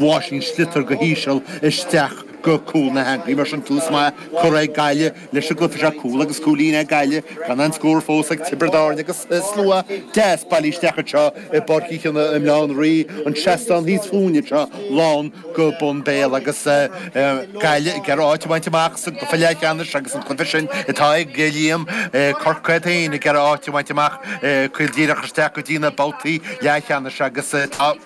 Bhuail sí an sliotar go híseal isteach go cúl na heangaí, mar sin tús maith curtha ag Gaillimh leis an gcluiche seo. Cúl agus cúilín ag Gaillimh, gan aon scór fós ag Tiobraid Árann agus slua deas bailithe isteach anseo i bPáirc Uí Chionnaith i mBleán Rí, an seastán thíos fúinne anseo lán go bun béil agus Gaillimh ag iarraidh áit a bhaint amach sa gcluiche leathcheannais agus an cluiche sin atá ag Liam, Corcaigh iad féin ag iarraidh áit a bhaint amach. Caol díreach isteach go dtí na babhtaí leathcheannais agus tá.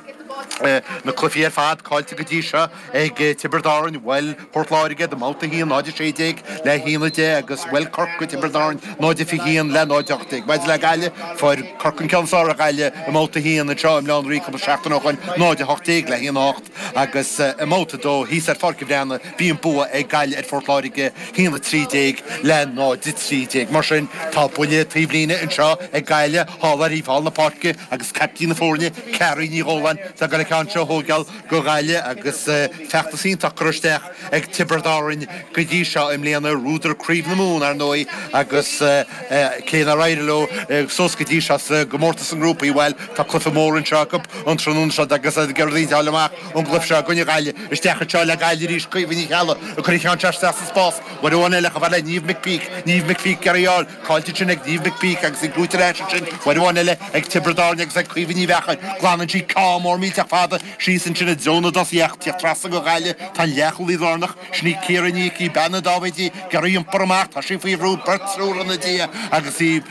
Na cluichí ar fad caillte go dtí seo ag Tiobraid Árainn, bhuail Port Láirge iad i mbabhta a haon, 0-16 le 1-10 agus bhuail Corcaigh Tiobraid Árainn, 0-21 le 0-18. Maidir le Gaillimh, fuair Corcaigh an ceann is fearr ar Ghaillimh i mbabhta a haon anseo i mBleán Rí cúpla seachtain ó shoin, 0-18 le 1-8, agus i mbabhta a dó thíos ar Pháirc an Bhreathnaigh bhí an bua ag Gaillimh ar Phort Láirge, 1-13 le 0-13. Mar sin tá buille taobh líne anseo ag Gaillimh thall ar thaobh thall na páirce agus caiptín na foirne, Carrie Ní Dhóláin atá ag goil an ceann seo a thógáil go Gaillimh agus feachtas iontach curtha isteach ag Tiobraid Árainn go dtí seo i mbliana, ghnódar Craobh na Mumhan, ar ndóigh, agus cé nár éirigh leo suas go dtí seo sa gcomórtas sna grúpaí, bhuel, tá cluiche mór anseo acu an tráthnóna seo agus iad ag iarraidh rud éicint a fháil amach ón gcluiche seo i gcoinne Ghaillimh. Isteach anseo le Gaillimh arís Caoimhe Ní Cheallaigh ag cur an ceann seo isteach sa spás, uair amháin eile chomh maith le Niamh McPeake, Niamh McPeake, ag iarraidh é a fháil, Caillte ansin ag Niamh McPeake agus é gnóite ar ais ansin, uair amháin eile ag Tiobraid Árainn agus ag Caoimhe Ní Mheachair. Glanann sí ceann mór millteach fada síos ansin i dtreo na dtosaithe ach ag tíocht trasna go Gaillimh, tá an leathchúlaí lárnach, sin í Ciara Ní Icí, bean na Dáibhéidí, ag iarraidh é a iompar amach, tá sí faoi bhrú, beirt, triúr ina diaidh agus í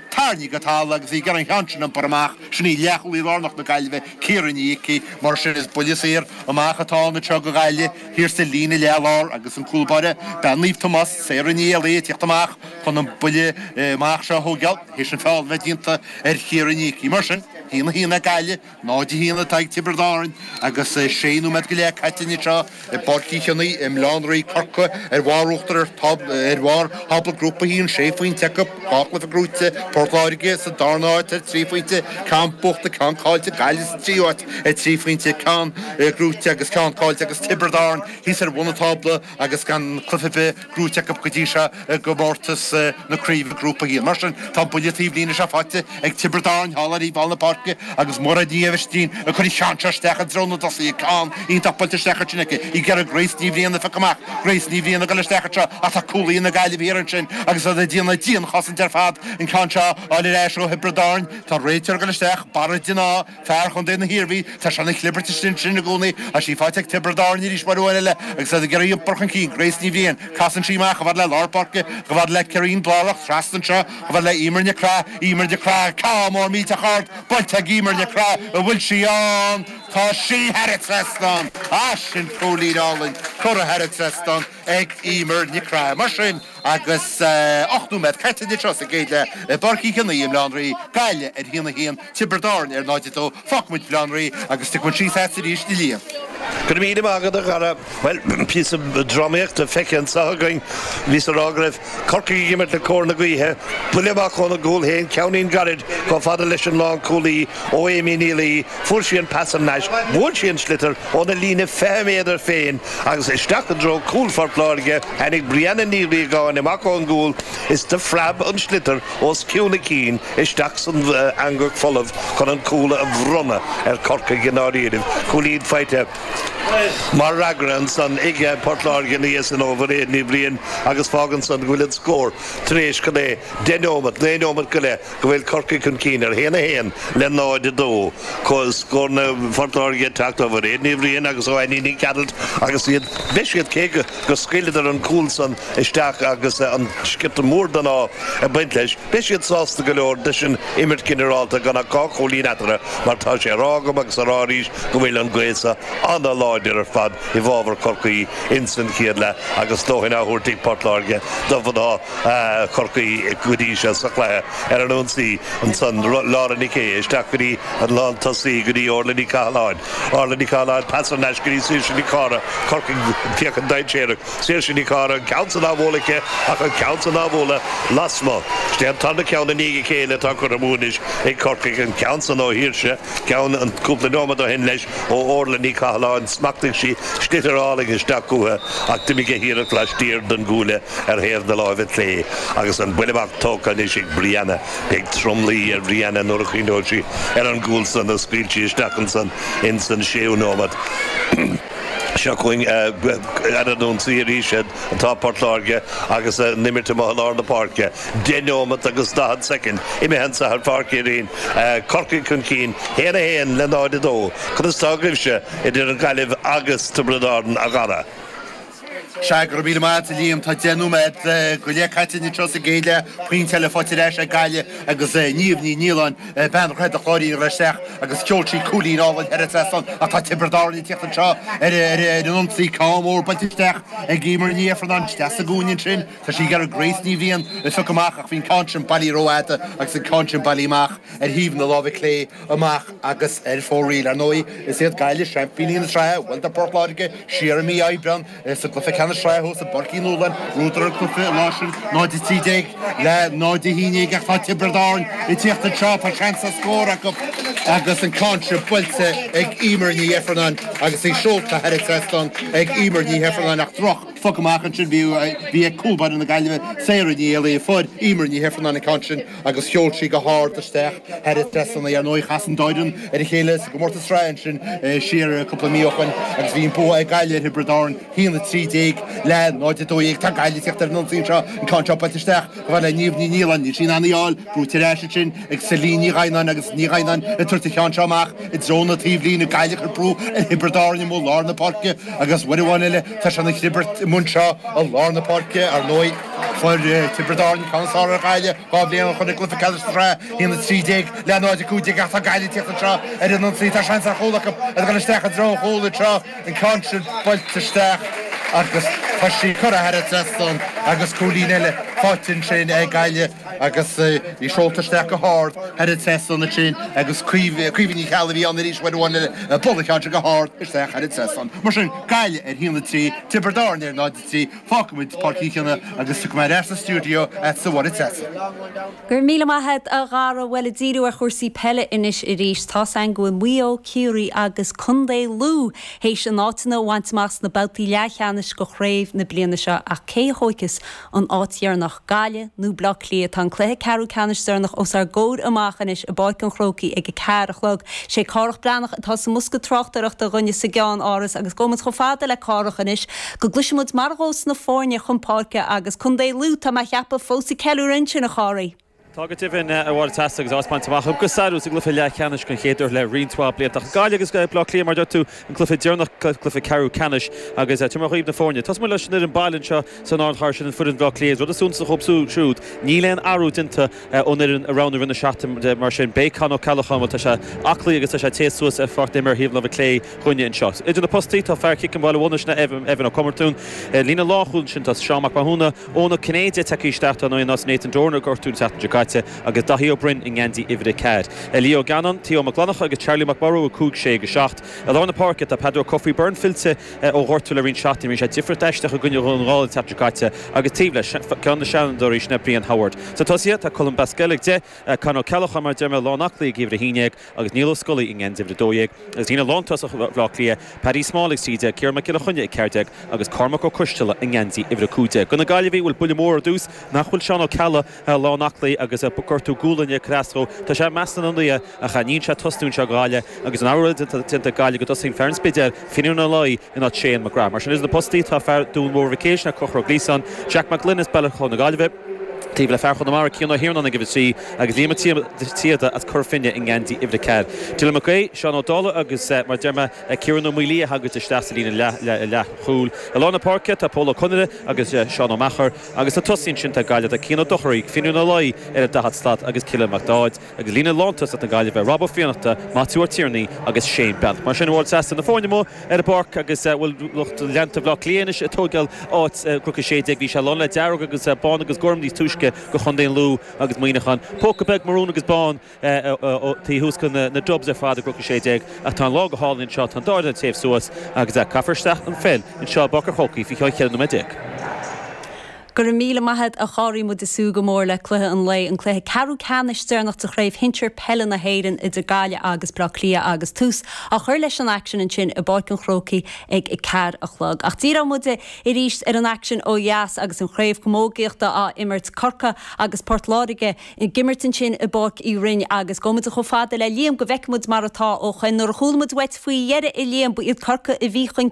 tarraingthe go talamh agus í ag iarraidh an ceann sin a iompar amach. Sin í leathchúlaí lárnach na Gaillimhe, Ciara Ní Icí. Mar sin, is buille saor amach atá ann anseo go Gaillimh, thiar sa líne leath-lár agus an cúl báire, bean Naomh Tomás, Sarah Ní Éalaí, ag tíocht amach. chun an buille amach seo a thóigeáil théis an feall a bheith déanta ar Chiara Ní Icí. Mar sin, 1 1 ag Gaillimh, 0 1 atá ag Tiobraid Árainn agus sé nóiméad go leith caite anseo i bPáirc Uí Chionaoith i mBleán Rí Corcaigh ar bharr uachtar ar bharr thábla grúpa 1, sé phointe acu, dhá chluiche gnóite, Port Láirge sa darna áit ar trí phointe, ceann buachta, ceann caillte, Gaillimh sa tríú áit ar trí phointe, ceann gnóite agus ceann caillte agus Tiobraid Árainn thíos ar bhun an tábla agus gan cluiche ar bith gnóite acu go dtí seo i gcomórtas na craoibhe grúpa 1. Mar sin, tá buille taobhlíne seo faighte ag Tiobraid Árainn thall ar thaobh thall na páirce agus Mairéad Ní Aibhistín ag cur an ceann seo isteach i dtreo na dtosaithe, ceann iontach buailte isteach ansin aici í gCiarraí Grace Ní Bhriain a phiocadh amach Grace Ní Bhriain ag goil isteach anseo ach tá cúlaithe na Gaillimhe thiar ansin agus iad ag déanamh dianchosaint ar fad an ceann seo a fháil ar ais ó Thiobraid Árainn. Tá an réiteoir ag goil isteach, Barra De Ná, Fear chontae na hIarmhí, tá sé ina chlibirt istigh ansin i gcónaí ach sí faighte ag Tiobraid Árann arís mar uair eile agus iad ag iarraidh iompar chun cinn Grace Ní Bhriain. Casann sí amach, chomh fada le lár páirce, chomh fada le Karin Blair, trasna anseo, chomh fada le Eimear Nic Craith, Eimear Nic Craith, ceann mór millteach ard, buailte ag Eimear Nic Craith, an bhfuil sí ann? Tá sí thar an trasnán! Ah sin cúilín álainn curtha thar an trasnán ag Eimear Nic Craith. Mar sin agus 8 nóiméad caite anseo sa gcéad leath i bPáirc Uí Chionaoith i mBaile Átha an Rí, Gaillimh ar 1-1, Tiobraid Árann ar 0-2. Fágfaidh muid Baile Átha an Rí agus tiocfaidh muid síos ar ais arís ag Liam. Go raibh míle maith agat a Dhara. Bhuel, píosa drámaíochta feicthe anseo againn. Bhíos ag rá go raibh Corcaigh ag imirt le cóir na gaoithe. Buille amach óna gcúl féin, ceainnín gairid chomh fada leis an lánchúlaí ó Amy Ní Laoi, fuair sí an pas thar n-ais, bhuail sí an sliotar óna líne 20 méadar féin agus isteach i dtreo cúl Phort Láirge, tháinig Brianna Ní Riagáin amach ón gcúl is do phreab an sliotar os cionn a cinn, isteach san eangach folamh chun an cúl a bhronnadh ar Corcaigh i ndáiríribh, cúilín faighte mar fhreagra ansan ag Port Láirge ina dhiaidh sin ó Mhairéad Ní Bhriain agus fágann san go bhfuil an scór tar éis, cad é, deich neomat, naoi neomat go leith, go bhfuil Corcaigh chun cinn ar haon a haon le 0, 2. Scóranna Phort Láirge ag teacht ó Mhairéad Ní Bhriain agus ó Annie Nic Gearailt agus iad, beidh siad, cé go. go scaoileadar an cúl san isteach agus an sciorta mór den ádh ag baint leis. Beidh siad sásta go leor leis an imirt ginearálta gan ach dhá chúilín eatarthu mar tá sé á rá agam agus á rá arís go bhfuil an gaoth sa an-láidir ar fad i bhfábhar Chorcaí insan chéad leath agus a ndóthain á thabhairt ag Port Láirge do mhná Chorcaí go dtí seo sa chluiche ar an ionsaí ansan, Laura Nic Aodha isteach go dtí an lántosaí go dtí Orlaith Ní Chathalláin. Orlaith Ní Chathalláin, pas thar n-ais go dtí Saoirse Nic Cárthaigh, Corcaigh ag féachaint dainséarach, Saoirse Nic Cárthaigh, an ceann san á bhualadh aici ach an ceann san á bhualadh lasmuigh. Is é an tarna ceann i ndiaidh a chéile atá curtha amú anois ag Corcaigh, an ceann san ó Shaoirse. ceann ann cúpla nóimead ó shin leis ó Orlaith Ní Chathalláin, smachtaigh sí sliotar álainn isteach chúithi ach d'imigh a hiarracht laistiar den gcuaille ar thaobh na láimhe clé agus an buille amach tógtha anois ag Brianna. Beidh tromluí ar Bhrianna nuair a chuimhneoidh sí ar an gcúl san a scaoil sí isteach ansan ins an séú nóimead. Seo chugainn ar an ionsaí arís atá Port Láirge agus a n-imirt amuigh i lár na páirce. 10 nóimeat agus 40 soicind imithe anseo ar Pháirc Uí Rinn, Corcaigh chun cinn 1 1 le 0 2. Conas tá agaibhse idir an Ghaillimh agus Tiobraid Árann a Dhara? Sea, go raibh míle maith agat a Liam. Tá deich nóiméad go leith caite anois seo sa gcéad leath, pointe eile faighte ar ais ag Gaillimh agus Niamh Ní Nialláin, bean Dhroichead an Chláirín, bhris isteach agus sheol sí cúilín álainn thar an trasnán ach tá Tiobraid Árann ag teacht anseo ar an ionsaí, ceann mór buailte isteach ag Eimear Ní Ifearnáin, isteach sa gcúinne ansin. Tá sí gar ag Grace Ní Bhriain le fioc amach ach bhí an ceann sin bailithe ró-fhada agus an ceann sin bailithe amach ar thaobh na láimhe clé amach agus ar fóraoil. Ar ndóigh is iad Gaillimh seaimpíní na sraithe, bhuaileadar Port Láirge siar i mí Aibreán sa gcluiche ceannais sraithe thuas i bPáirc Uí Nualláin, bhuadar an cluiche an lá sin 0-13 le 0-11 ach tá Tiobraid Árann ag tíocht anseo, tá seans ar scór acu agus an ceann sin buailte ag Eimear Ní hIfearnáin agus í seolta thar an trasnán ag Eimear Ní hIfearnáin ach droch. phoc amach ansin bhí bhí ag cúl báire na Gaillimhe, Sarah Ní Éalaí. Fuair Eimear Ní hIfearnáin an ceann sin agus sheol sí go hard isteach thar an trasnán. Ar ndóigh chas an dá fhoireann ar a chéile sa gcomórtas sraithe ansin siar cúpla mí ó shoin agus bhí an bua ag Gaillimh ar Thiobraid Árann, 1, 13, le 0, 12. Tá Gaillimh ag teacht ar an ionsaí anseo, an ceann seo buailte isteach chomh fada le Niamh Ní Nialáin. Níl sí in ann í a fháil, brúite ar ais ansin. ag Celine Ní Gheaghnáin agus Ní Gheaghnáin ag tabhairt an ceann seo amach i dtreo na taobhlíne, Gaillimh ag brú ar Thiobraid Árann amuigh i lár na páirce agus uair amháin eile tá clibirt ar bun anseo i lár na páirce. Ar ndóigh, fuair Tiobraid Árann an ceann is fearr ar Ghaillimh dhá bhliain ó shin i gcluiche ceannais na sraithe, 1-13 le 0-15, ach tá Gaillimh ag teacht anseo ar an ionsaí, tá seans ar chúl acu ag dul isteach i dtreo an chúil, agus an ceann sin buailte isteach agus tá sí curtha thar an trasnán agus cúilín eile faighte ansin ag Gaillimh. agus í seolta isteach go hard thar an trasnán ansin agus Caoimhe Ní Cheallaigh a bhí ann arís uair amháin eile a bhuail an ceann sin go hard isteach thar an trasnán. Mar sin, Gaillimh ar haon a trí, Tiobraid Árann ar náid a trí. Fágfaimid Páirc Uí Chionnaith agus tiocfaidh mé ar ais sa stiúideo agatsa, a Mháire Treasa. Go raibh míle maith agat, a Dhara! Bhuel, ag díriú ar chúrsaí peile anois arís, tá's againn go bhfuil Maigh Eo, Ciarraí agus Contae Lú théis a n-áiteanna a bhaint amach sna babhtaí leathcheannais de chraobh na bliana seo, ach cé a thóigfeas An áit dheireanach, Gaillimh nó Bleá Cliath? Tá an cluiche ceathrú ceannais deireanach os ár gcomhair amach anois i bPáirc an Chrócaigh ag a ceathair a chlog. Sé Cárthach Breathnach atá sa mbosca tráchtaireachta dhúinne sa gCeann Áras agus gabhfaimid chomh fada le Cárthach anois go gcloisfimid mar a ghabhfas na foirne chun páirce agus contae Lú, tá mé a cheapadh, fós ag ceiliúradh ansin, a Chárthaigh. Tá go deimhin a Mháire Treasa agus áit bainte amach acu go sárú sa gcluiche leathcheannais den chéad uair le roinnt mhaith blianta. Ach Gaillimh agus Baile Átha Cliath, mar a dúirt tú, an cluiche deireanach, cluiche ceathrú ceannais agus tabharfaimid dhaoibh na foirne. Tosóimid leis an fhoireann baile anseo san ardchathair, sin foireann Bhaile Átha Cliath. An rud is suntasaí dóibh siúd, níl aon athrú déanta ón fhoireann a roghnaíodh i rith na seachtaine, mar sin beidh Con O'Callaghan, bhuel tá sé aclaí agus tá sé ag téamh suas ar pháirc na himeartha ar thaobh na láimhe clé dhúinne anseo. Idir na postaí tá fear Chiceam Bhaile Munna, sin, Evan Ó Comartún, ar líne lánchúil ansin tá Seán Mac Mathúna, Eoin Ó Cinnéide ag teacht isteach dar ndóigh in áit Nathan Doran a gortaíodh an tseachtain seo caite agus Daithí Ó Broin i ngeansaí uimhir a ceathair. Lee Gannon, Theo Mac Fhlannchadha agus Charlie McMorrow, 5, 6 agus 7. I lár na páirce tá Peadar Ó Cofaigh Byrne fillte ó ghortú le roinnt seachtainí, rinne sé difríocht aisteach i gcoinne Dhún na nGall an tseachtain seo caite, agus taobh leis, ceann de na seanfhondúirí sin é Brian Howard. Sna tosaithe tá Colm Basquel ag 10, Con Ó Ceallacháin mar a deir mé lán aclaí ag uimhir a haon déag, agus Niall Ó Scolaí i ngeansaí uimhir 12, agus líne lántosach Bhleá Cliath, Paddy Small ag 13, Ciarán Mac Giolla Chainnigh ag 14 agus Cormac Ó Coisteala i ngeansaí uimhir 15. Do na Gaillimhigh bhuel buille mór ar dtús nach bhfuil Seán Ó Ceallaigh lán aclaí agus gortú gualainne ag cur as dó. Tá sé i measc na n-ionadaithe ach níl sé ag tosnú anseo ag Gaillimh agus an amhlaidh déanta ag Gaillimh go dtosaíonn fear an Spidéil, Finnian Ó Laoi, in áit Shane McGrath. Mar sin idir na postaí tá fear Dhún Mór Mhic Éil, sin é Conchúr Ó Gliasáin, Jack Mac Gloinn as Baile Chláir na Gaillimhe. taobh le fear Chonamara Cian Ó hIarnáin ag uimhir a trí agus Liam Ó Síoda as Cora Finne i ngeansaí uimhir a ceathair. Dylan Mac Aoidh, Seán Ó Dálaigh agus, mar a deir mé, Kieran Ó Maoilí a thagann isteach sa líne leathchúil. I lár na páirce tá Pól Ó Conaire agus Seán Ó Meachair agus sna tosaithe ansin ag Gaillimh, tá Cian Ó Dorchaí, Finnian Ó Laoi ar an daichead slat agus Cillian Mac Dáid. Ag líne lántosach na Gaillimhe, Rob Ó Fiannachta, Maitiú Ó Tiarnaigh agus Shane Breathnach. Mar sin a bhfuil seasamh na foirne amuigh ar an bpáirc agus bhuel lucht leanta Bhleá Cliath anois ag tóigeáil áit i gCnoc 16. Bhí sé lán le dearg agus bán agus gorm níos túisce do Chontae an Lú agus Muineachán póca beag marún agus bán taobh thuas de na Dubs ar fad i gCnoc 16. Ach tá an lá go hálainn anseo. Tá an dá fhoireann ag téamh suas agus caithfear isteach an pheil anseo i bPáirc an Chrócaigh faoi cheann 14 nóiméad. Go raibh míle maith agat a Gharry. Muid ag súil go mór le cluiche an lae, an cluiche ceathrú ceannais deireanach de chraobh shinsir peile na hÉireann idir Gaillimh agus Baile Átha Cliath agus tús á chur leis an aicsean ansin i bPáirc an Chrócaigh ag a ceathair a chlog. Ach díreoidh muid arís ar an aicsean ó dheas agus an chraobh chamógaíochta á imirt, Corcaigh agus Port Láirge ag imirt ansin i bPáirc Uí Rinn agus gabhfaidh muid chomh fada le Liam go bhfeicfidh muid mar atá ó shin. Nuair a chuala muid uait faoi dheireadh a Liam, ba iad Corcaigh a bhí chun